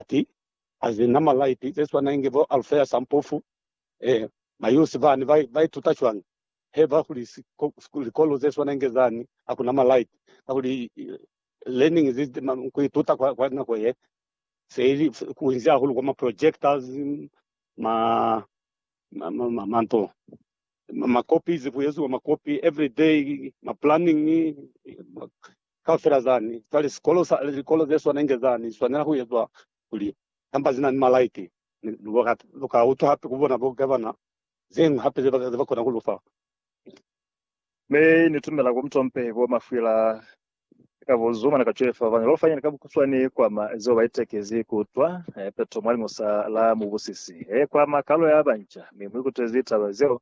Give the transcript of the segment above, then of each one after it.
Ati a zi na malaipi ze swana inge bo Alfeus a mpofu. Ee, mayusi bani ba, ba ituta cwañi he ba hulisi ku likolo ze swana inge zani? Ha ku na malaipi, kakuli learning is ku ituta kwa, kwa nako ye se ili kunzi hahulu kwa ma projectors, ma, ma, ma, ma, ma nto ma copies, ku eziwa ma copy every day, ma planning, kaufela zani za lisikolo, likolo ze swana inge zani li swanela ku ezwa kuli kamba zina ni malaiti. Mi lu ka utwa hape ku bona bo gavana zeñwi hape ze ba kona ku lu fa. Mi Ni tumela ku mutompe bo mafwila ka bo zuma ni ka cwefa bana loo fanyeni ka bukuswani kwa ma zeo ba itekezi ku utwa. Peto mwa liñusa la mubusisi he kwa makalo ya banca, mi mu ikutezi taba zeo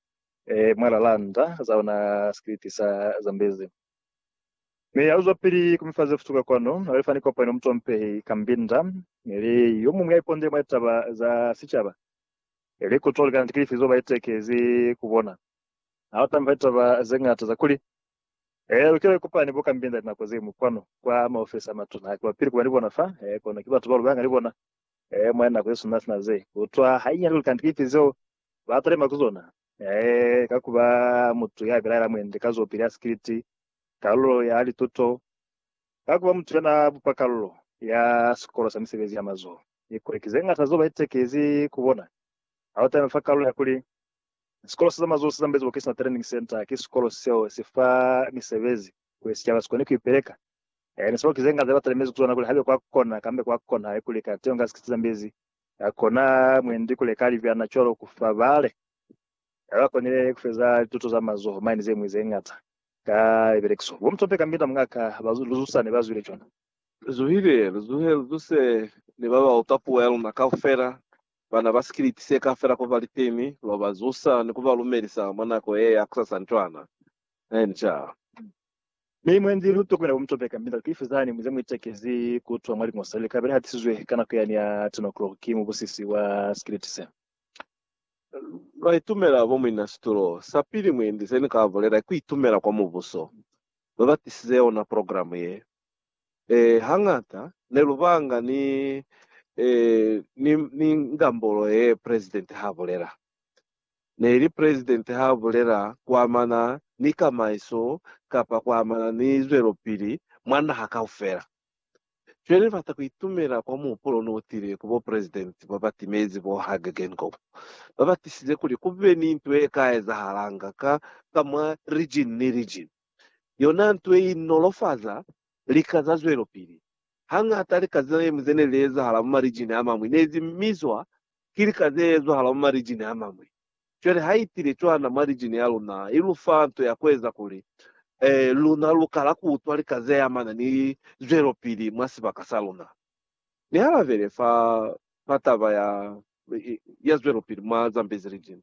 mwalala nda za ona sikiliti sa Zambezi. Mi ya luzwapili ku mifa ze futuka kwanu, ali fani kopano mutompehi Kambinda ili yo muñwi ya ipondele mwa litaba za sicaba, ili ku toli kaniti kilifi zo ba itekezi ku bona. Ha utami fa litaba ze ñata za kuli, Ee, lukile kupa ni bo Kambinda linako ze ñwi kwanu kwa maofisi a matuna. Ha ki ba pili kuba ni bona fa, kono ki batu ba lu banga ni bona mwa linako ze suna sina ze. Ku utwa hainyani kuli kaniti kilifi zeo ba talima ku zona, ee, ka ku ba mutu ya bilaela mwendi ka zopili ya sikiliti, kalulo ya lituto, ka ku ba mutu ya na bupa kalulo ya sikolo sa misebezi ya mazoho. Kikuli ki ze ñata zeo ba itekezi ku bona ha ba talima fa kalulo ya kuli, Sikolo sa za Mazoho se Zambeziwa Kilisima Training Centre ki sikolo seo si fa misebezi kuli sicaba si kone ku ipeleka. Ee, ni sabo ki ze ñata ze ba talimezi ku zona kuli ha be kwa kona kambe kwa konaha kuli kateho nga sikiliti zambezi ya kona mwendi ku leka libyana cwalo ku fa bale. Ha ba konile ku feza lituto za mazoho mane ze ñwi ze ñata ka libelekiso, bo Mtompe ka Mbinda Mungaka ba Luzusa ne ba zwile cwana. Lu zuhile, lu zuhe, lu zuse ni ba ba utwa puo ya luna kaufela, bana ba sikiliti se kaufela ku ba litemi, lwa ba zusa ni ku ba lumelisa mwa nako ye ya kusasani cwana. Enca. Mi mwendi lu tokwela ku mi topeka mi lati, Ifezani mu ze mu itekezi ku twa mwa liño se li ka be li hatisizwe ka nako yani ya 10 o'clock ki mubusisi wa sikiliti se. Lwa itumela bo muina situlo. Sa pili mwendi se ni ka bulela ki itumela kwa Mubuso. Ba ba tisize yona program ye. Eh, hañata ne lu banga ni, eh, ni, ni ngambolo ye President ha bulela. Neli President ha bulela kuamana ni kamaiso kapa kuamana ni zwelopili mwa naha kaufela. Cwale ni bata kuitumela kwa muhupulo no utile ku bo President ba ba timezi bo Hage Geingob, ba ba tisize kuli kube ni nto ye ka ezahalanga ka ka mwa region ni region. Yona nto ye i nolofaza lika za zwelopili. Hangata lika zina ye mu ze ne li ezahala mwa ma region a mañwi ne zi mizwa Ki lika ze ezahala mwa marijini a mañwi. Cwale ha i tile cwana mwa rijini ya luna, i lu fa nto ya ku eza kuli luna lu kala ku utwa lika ze amana ni zwelopili mwa sibaka sa luna. Ni halabele fa, fa taba ya, ya zwelopili mwa Zambezi Region,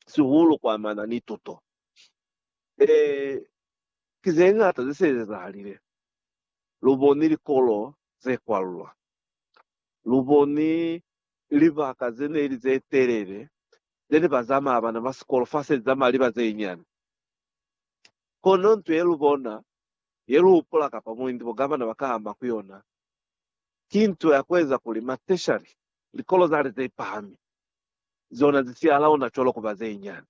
sihulu ku amana ni tuto. Ee, ki ze ñata ze se ezahalile. Lu boni likolo ze kwalulwa. Lu boni libaka ze ne li ze telele ze ne ba zamaya bana ba sikolo fa se zamaya liba ze nyane. Kono nto ye lu bona, ye lu hupula kapa muindi bo gavana ba ka ama ku yona, ki nto ya ku eza kuli ma tertiary, likolo za li ze pahami, zona zi siya laona cwalo ku ba ze nyane.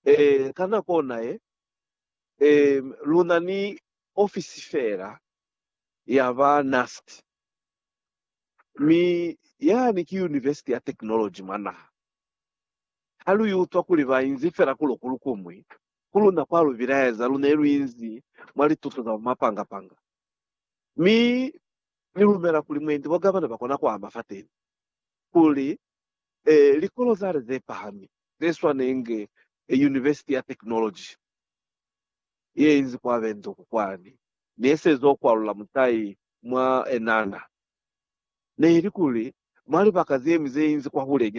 Ee, ka nako ona ye, ee, lu na ni ofisi fela ya ba NUST, mi yani ki Yunivesiti ya Technology mwa naha. Ha lu iutwa kuli ba inzi fela ku lokulu ku mwi ku luna kwa lu bilaeza, lu ne lu inzi mwa lituto za bumapanga-panga, mi Ni lumela kuli mwendi bo gavana ba kona ku ama fateni kuli e, likolo zale ze pahami ze swanenge e Yunivesiti ya Technology. yeinzi kwa benduku kwani, nesezo kwalula mutai mwa enana. Neili kuli mwa libaka zemi zeinzi kwahule nyana.